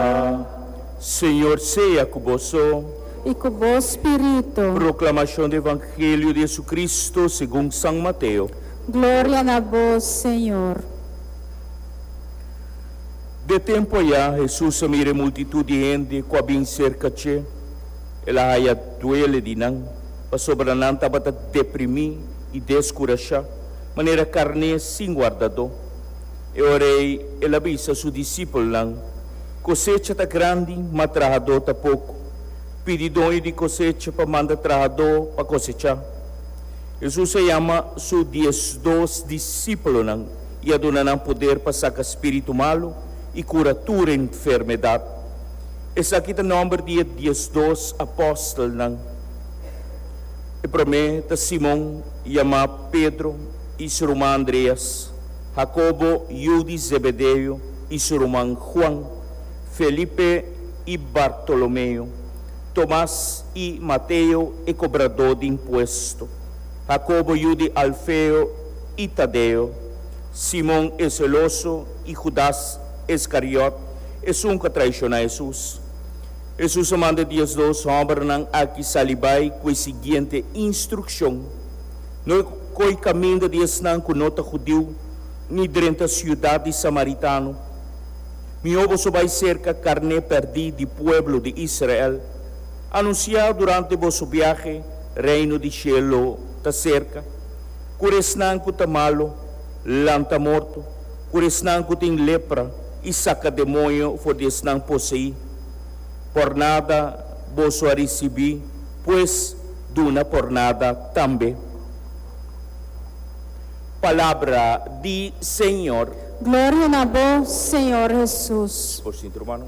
A Señor sea cu boso. I cu bo spiritu. Proclamacion di Evangelio di JesuCristo segun San Mateo. Gloria na bo, Señor. De tempu ayá, Jesus a mira e multitud di hende cu a bin cerca dje. El a haya duele di nan, pasobra nan tabata deprimí i descurashá, manera carné sin wardadó. E ora ei el a bisa su disipelnan, Kosecha ta grandi, ma trahadó ta poko. Pidi doño di kosecha pa manda trahadó pa kosechá. Hesus a yama su diesdos disipelonan i a duna nan poder pa saka spiritu malu i kura tur enfermedat. Esaki ta nòmber di e diesdos apòstelnan. E promé ta Simon, yamá Pedro, i se ruma Andreas. Jacobo, yu di Zebedeo, i su ruman Juan, Felipe i Bartolomeo, Tomas i Mateo e kobradó di impuesto, Jacobo yu di Alfeo i Tadeo, Simon e seloso i Judas Escariot, esun ku a traishoná Hesus. Hesus a manda diesdos hòmbernan aki sali bai ku e siguiente instrukshon, No e ko'i kaminda di esnan ku no ta Judiu, ni drenta siudat di samaritano. Mihó boso bai serka karné pèrdí di pueblo di Israel. Anunsiá durante boso biahe, Reino di shelo ta serka. Kura esnan ku ta malu, lanta morto, kura esnan ku tin lepra i saka demoño for di esnan poseí. Por nada boso a risibí. Pues duna por nada tambe. Palabra di Señor. Gloria na bo, Señor Hesus. Por sinti, rumannan.